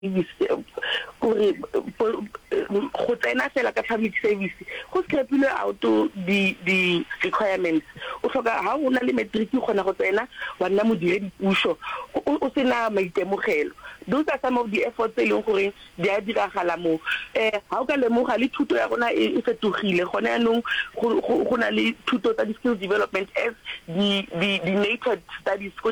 service gore go tsena fela ka public service go scrapilwe out di di requirements o hloka ha o na le matric o kgona go tsena wa nna modiredi puso o sena maitemogelo those are some of the efforts e leng gore di a diragala mo eh ha o ka lemoga le thuto ya rona e fetogile gone yanong go na le thuto tsa di skill development as di di di native studies ko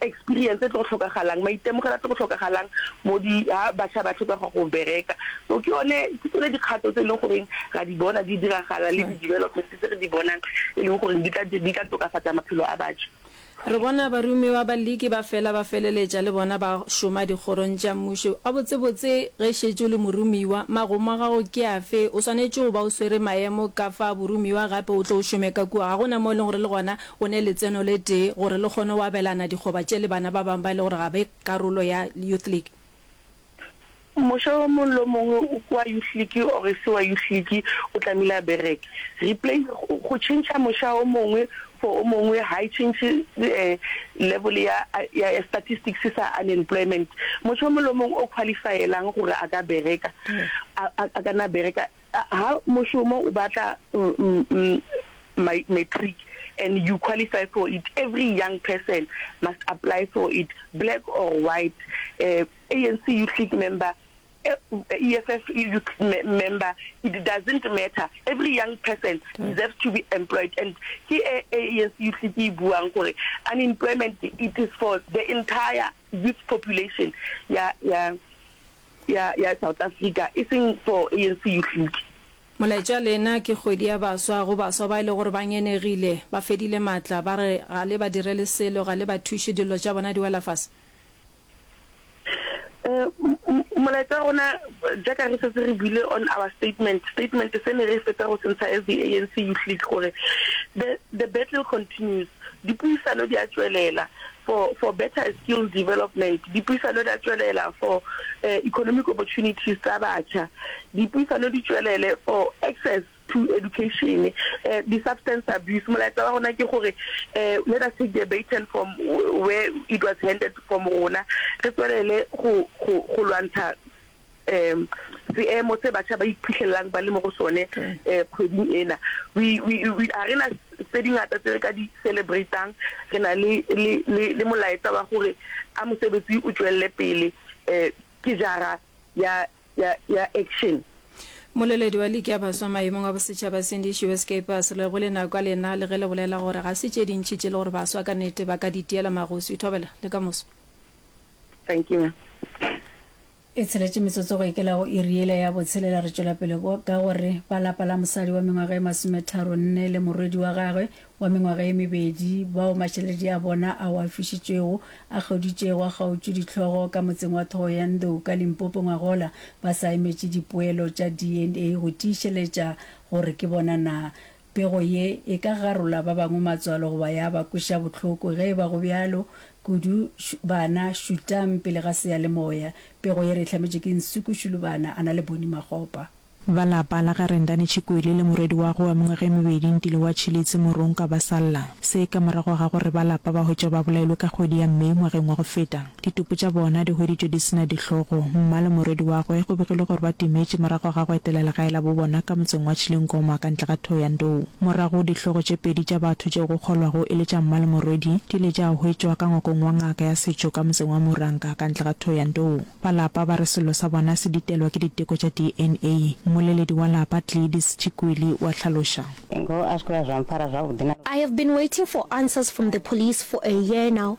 Experience e tlo go hlokagalang, maitemogelo a tlo go hlokagalang mo di ha bašwa ba tlhoka go ya go bereka. So ke yone, ke tsone dikgato tse e leng goreng ra di bona di diragala le di-development tse re di bonang e leng goreng di tla di tla tokafatsa maphelo a bašwa. Re bona baromiwa ba Liki ba fela ba feleletša le bona ba šoma dikgorong tša mmušo. Gabotsebotse, ge e šetše o le moromiwa, magomo a gago ke afe? O swanetše go ba o swere maemo ka fa boromiwa gape o tle o šome ka kua. Ga go na mo e leng gore le gona O ne letseno le tee gore le kgone go abelana dikgoba tše le bana ba bangwe ba e le gore ga be karolo ya Youth League. Mosha o mongwe le o mongwe o kwa Youth League or e se wa Youth League o tlamehile a bereke. Replace, go tšhentšha mosha o mongwe for o mongwe ga e tšhentšhe level ya ya statistics sa unemployment. Mosha o mongwe le o mongwe o qualify-elang gore a ka bereka a ka nna a bereka. Ha mošomo o batla matric and you qualify for it, every young person must apply for it, black or white, ANC youth league member, EFF youth member, it doesn't matter, every young person deserves to be employed and ke e ANC youth league e buang gore unemployment it is for the entire youth population ya ya ya South Africa e seng for ANC Youth League. Molaetša lena ke kgwedi ya baswa go baswa ba e le gore ba ngenegile, ba fedile matla, ba re ga le ba direle selo, ga le ba thuše, dillo tša bona di wela fase. Eh, molaetša rona jaaka re setse re buile on our statement, statement se ne re fetsa go se ntsha as the ANC Youth League gore the, the battle continues. Dipuisano di a tšwelela for for better skills development, dipuisano di a tšwelela for economic opportunities tsa batšha, dipuisano di tšwelele for access to education, di substance abuse. Molaetsa wa rona ke gore let us take the baton from where it was handed from rona re tšwelele go go go lwantsha. um seemo se batšha ba iphihlelelang ba le mo go sone um kgweding ena ga re na tse dingata tse re ka di celebratang re na le molaetsa wa gore a mosebetsi o tswelele pele um ke jara ya action Moleledi wa liki ya baswa maemong a bosetšhaba Cindy Shiwe Skeepers le go le nako a lena le ge le bolela gore ga se tše dintši tše le gore baswa ka nete ba ka di tiela magosi. Thobela, le ka moso. Thank you ma'am. E tsheletše metsotso go ikela go iri yela ya botshelela. Re tšwela pele ka gore ba lapa la mosadi wa mengwaga e masometharo nne le morwedi wa gagwe wa mengwaga e mebedi bao matšheledi a bona ao a fišitšwego a kgauditšego a kgautšwe dihlogo ka motseng wa Thohoyandou ka Limpopo ngwagola ba sa emetše dipoelo tša DNA go tiišeletša gore ke bona na Pego ye e ka garola ba bangwe matswalo goba ya ba kweša bohloko. Ge e ba go bjalo, kudu bana šutang pele ga seyalemoya. Pego ye re e hlametšwe ke Nsuku Shulubana, a na le Boni Magopa. Ba lapa la ga Rendane Chikwele le morwedi wa go wa mengwaga e mebedi Ntile wa Chilitse Morongka ba sa lla se ka morago ga gore ba lapa ba hwetšwa ba bolailwe ka kgwedi ya May ngwageng wa go feta. Ditopo tša bona di hweditšwe di se na dihlogo. Mma le morwedi wa gwe go begilwe gore ba timetše morago ga go etela legae la bo bona ka motseng wa Chilingoma ka ntle ga Thohoyandou. Morago dihlogo tše pedi tša batho tšeo go kgolwago e le tša mma le morwedi di ile tša hwetšwa ka ngwakong wa ngaka ya setšo ka motseng wa Muranga ka ntle ga Thohoyandou. Ba lapa ba re sello sa bona se ditelwa ke diteko tša DNA. Mmoleledi wa lapa Gleadys Chikwili o a hlaloša. I have been waiting for answers from the police for a year now.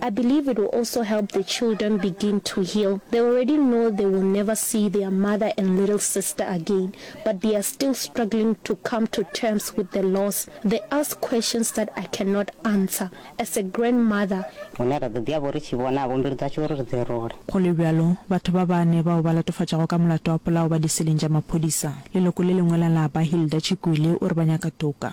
I believe it will also help the children begin to heal, they already know they will never see their mother and little sister again but they are still struggling to come to terms with the loss, they ask questions that I cannot answer as a grandmother. Hune ra ḓo ḓi ya vho ri tshi vhonavho mbilu dzashu uri ri dzi rule. Go le bjalo, batho ba bane bao ba latofatšago ka molato wa polao ba diseleng tša maphodisa. Leloko le lengwe la lapa, Hilda Chikwili, o re ba nyaka toka.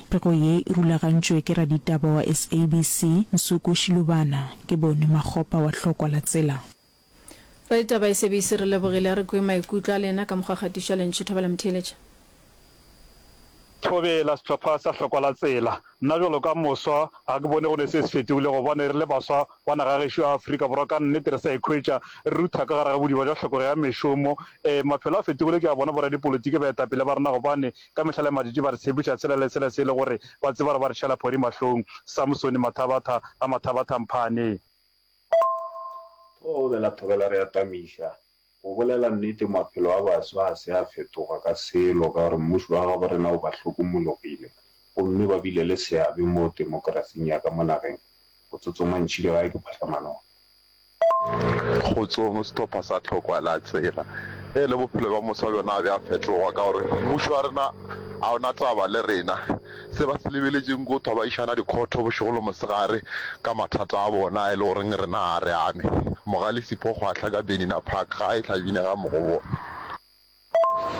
Pego ye e rulagantšwe ke raditaba wa SABC, Nsuku Shilubana. Ke Boni Makgopa wa hlokwa la tsela. Raditaba SABC re lebogile, a re kwe maikutlo a lena ka mokgwa kgatišo ya lentšu Thabela Mtheeletša. Thobela, Sehlopha sa hlokwa la tsela. Nna bjalo ka moswa ga ke bone go ne se se fetogile gobane re le baswa ba naga ya gešo ya Afrika Borwa ka nnete re sa ikhwetša re rutha ka gare ga bodiba bja hlokego ya mešomo. Ee, maphelo a fetogile ke a bona boradipolitiki baetapele ba rena gobane Ka mehla le madidi ba re tshepiša sela le sela se e le gore ba tseba gore ba re šala phori mahlong. Samsone Mathabatha ga Mathabatha Mphane. Go be la thobela re atamiša. Go bolela nnete maphelo a baso ga se a fetoga ka selo ka gore mmušo wa gabo rena o ba hlokomologile gomme ba bile le seabe mo temokerasing ya ka mo nageng. Go tsotsongwa ntšhidigae ke phahlamanong. Kgotsong ho sehlopha sa Tlhokwa la tseba e le bophelo bja mose wa bjona ga bja fetloga ka gore mmušo wa rena ga ona taba le rena. Se ba se lebeletšeng ke go thwa ba išana dikhotho bošego le mosegare ka mathata a bona e le goreng rena ga re ame. Mogalisi Phokgwahla ka Benina Park ga a e hlabine ga mo go bona.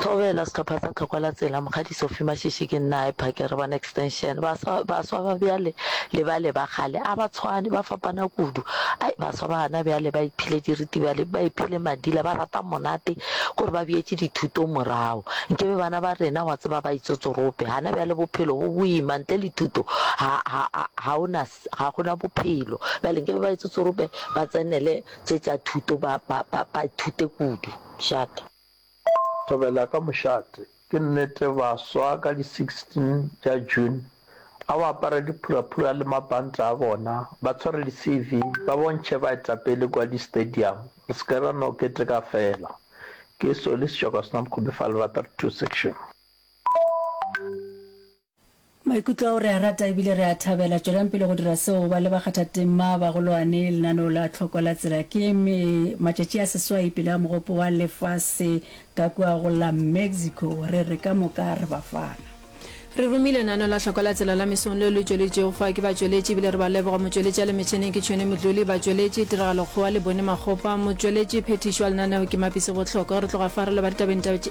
Thobela, Sehlopha sa Tlhokwa la Tsela, Mokgadi Sophie Mashishi ke nna a e phakere bona extension. Baswa baswa ba bjale le bale ba kgale a ba tshwane ba fapana kudu. Ai baswa ba hana bjale ba iphile diritibale ba iphile madila ba rata monate kore ba bjetše dithuto morago. Nke be bana ba rena wa tseba ba itsotsorope hana bjale bophelo bo boima ntle le thuto ha ha ha ha o na ga go na bophelo. Bjale nke be ba etsetse gore ba tsenele tše tša thuto, ba, ba, ba, ba ithute kudu. Šate. Thobela ka mošate. Ke nnete, baswa ka di 16 tša June, a ba apare diphuraphura le mabanta a bona, ba tshware di-CV, ba bontšhe baetapele kua di-stadium, re se ke ra no keteka feela. Ke Solly Sejoko Senamkgomo Fa Lerato Re Thuse Section. Maikutlo ao re a rata ebile re a thabela. Tšwelang pele go dira seo. Ba le bakgathatema, bagolwane, lenaneo la tlhoko la tsela. Ke me, matšatši a seswai pele a Mogopo wa Lefase ka kua go la Mexico. Re re ka moka re ba fana. Re rumi lenaneo la tlhoko la tsela la mesong leo le tšweletšwego fa ke batšweletši ebile re ba leboga. Motšweletši a le metšheneng ke Tšhweni Modluli, batšweletši, Tiragalo Kgowa le Boni Makgopa, motšweletši phethišo wa lenaneo ke Mapise Bohlokwa. Re tloga fa re leba ditabeng tša.